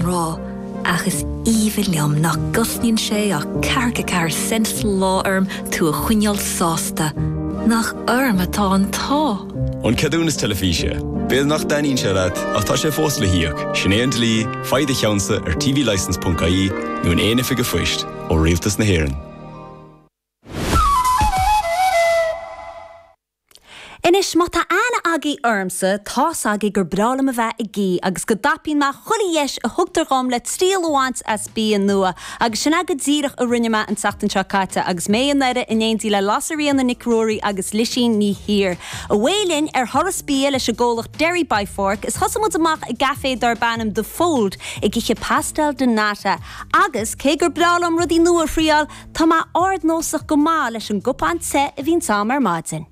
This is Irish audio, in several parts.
rá ach is aoibhinn liom nach gcosnaíonn sé ach ceathracha ceathair cent sa lá orm tú a choinneáil sásta. Nach orm atá an t-ádh! An ceadúnas teilifíse. B'fhéidir nach dtaitníonn sé leat ach tá sé fós le híoc, sin é an dlí, faigh do cheannsa ar tvlicence.ie nó in aon oifig phoist ó Rialtas na hÉireann. Anois, má tá aithne agaidh ormsa, tá's agaidh gur breá liom a bheith ag ithe agus go dtapaíonn mé chuile dheis a thugtar dhom le triail a bhaint as bia nua agus sin é go díreach a rinne mé an tseachtain seo caite agus mé i nDoire in éindí le Lasairfhíona Nic Ruairí agus Lisín Ní hÍr. Amuigh linn ar thuras bia leis an gcomhlacht Derry by Fork is thosaigh muid amach i gcaifé darb ainm The Fold ag ithe pastel de nata agus, cé gur breá liom rudaí nua a thriáil, Tá mé ard-nósach go maith leis an gcupán te a bhíonns a'm ar maidin.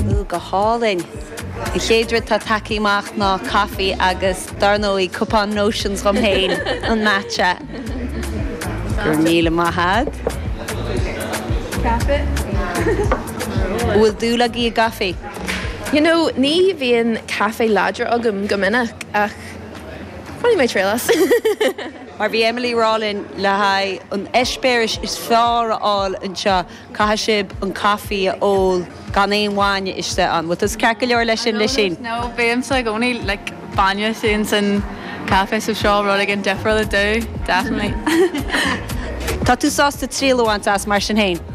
Ooh, go hálainn. An chéad rud atá tagtha amach ná caife agus, dar ndóigh, cupán Notions dhom féin, an matcha. Go raibh míle maith a'd. An bhfuil dúil agaí i gcaife? You know, ní bhíonn caife láidir agam go minic, ach. Bhainfidh mé triail as. Mar a bhí Emily a rá linn, le haghaidh an eispéiris is fearr a fháil anseo, caithfidh sibh an caife a ól gan aon bhainne istigh ann. An bhfuil tusa ceart go leor le sin, Lisín. No, no, no, bímse i gcónaí, like, bainne féin san caife so seo rud éigin difriúil domh, definitely. Tá tú sásta triail a bhaint as, mar sin féin?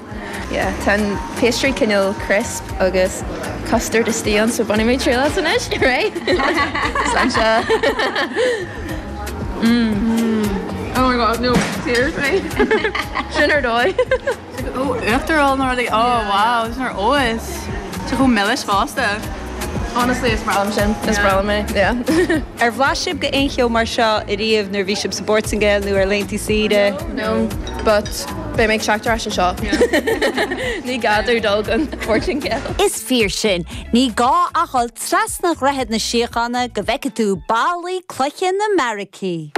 Tá an pastry cineál crisp agus custard istigh ann so bainfidh mé triail as anois. Hooray! Slán seo. Mmm. Oh my god, no, seriously? Sin ar dóigh. Uachtarán nó rudaí? Oh wow, sin ar fheabhas. Sé chomh milis fosta. Honestly is breá liom sin. Is breá liom mé, yeah. Ar bhlais sibh go aon cheo mar seo ariamh nuair a bhí sibh sa bPortaingéil nó ar laethantaí saoire? No, but beidh mé ag teacht ar ais anseo. Ní gá domh dul go dtí an Portaingéil. Is fíor sin. Ní gá ach dhul trasna Dhroichead na Síochána go bhfeicfidh tú ballaí, cloiche na mbeairicí.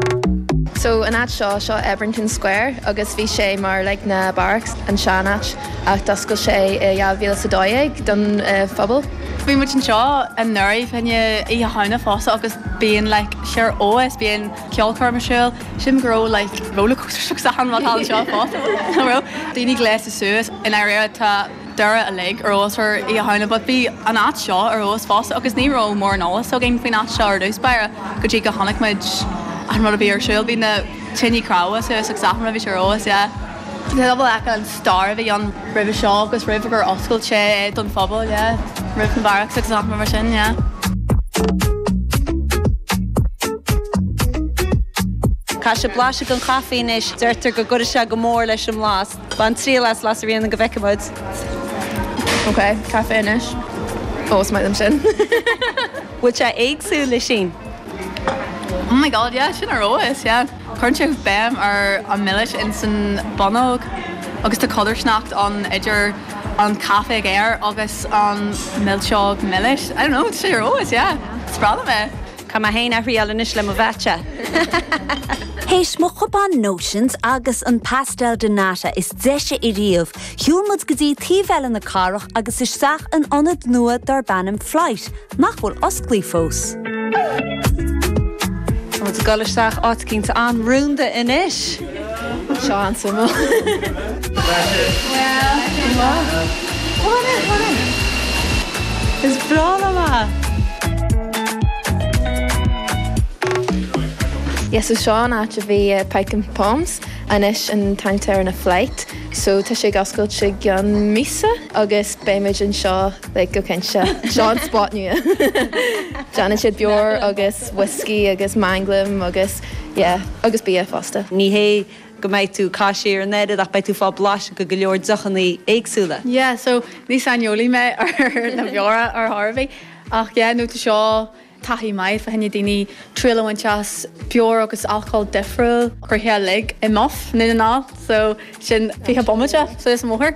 So, an áit seo, seo Ebrington Square agus bhí sé mar like na barracks, an sean áit ach d'oscail sé i 2012 don phobal. Bhí muid anseo anuraidh fá choinne Oíche Shamhna fosta agus bíonn like seó soilse bíonn ceolchoirm ar siúl, sílim go raibh like roller coasters agus achan rud thall anseo fosta, nach raibh? Daoine gléasta suas i ndáiríre tá. Doire uilig ar fheabhas ar Oíche Shamhna but bhí an áit seo ar fheabhas fosta agus ní raibh mórán eolas againn faoin áit seo ar dtús báire go dtí go chonaic muid an rud a bhí ar siúl. Bhí na tine cnámha suas agus achan rud a bhí sé ar fheabhas, yeah. Tá pobal acu, an stair a bhí ann roimhe seo agus roimh gur oscailt sé é don phobal, yeah. Roimh na barracks agus achan rud mar sin, yeah. Caithfidh mé blaiseadh den chaife anois, deirtear go gcuireann sé go mór leis an mblas. Bain triail as Las Arena go bhfeice muid. Ok, caife anois. Ó, is maith liom sin. Bhfuil sé éagsúil le sin? Oh my god yeah, sin ar fheabhas yeah. Cuireann sé béim ar an milis ins an bonnóg agus tá codarsnacht ann idir an caife géar agus an milseog milis. I don't know, tá sé ar fheabhas yeah. Spreagann mé. Caithfidh mé féin a thriail anois le mo latte. Théis mo chupán Notions agus an Pastel de Nata is deise i riamh, shiúil muid go dtí taobh eile na cathrach agus isteach in ionad nua darb ainm Flight, nach bhfuil osclaithe fós. Tá muid ag dul isteach, áit eicínt an-rúnda anois! Seo an suim ó. Well, go maith. Come on in, come on in. Is breá liom a. Yes, so seo an áit a bhí Pyke 'N' Pommes, anois an t-ainm atá air ná Flight. So tá sé ag oscailt i gcionn míosa agus beimid anseo like go cinnte. Seo an spot nua. Déanann siad beoir agus whisky agus manglam agus. Yeah, agus bia fosta. Ní hé go mbeidh tú ag caitheamh siar an oiread ach beidh tú ag fáil blaiseadh de go leor deochannaí éagsúla. Yeah, so ní saineolaí mé ar na beora ar chor ar bith ach yeah, no, tá seo taithí maith fá choinne daoine triail a bhaint as beoir agus alcól difriúil, curtha uilig i Muff i nDún na nGall, so sin 20 bomaite suas an bóthar.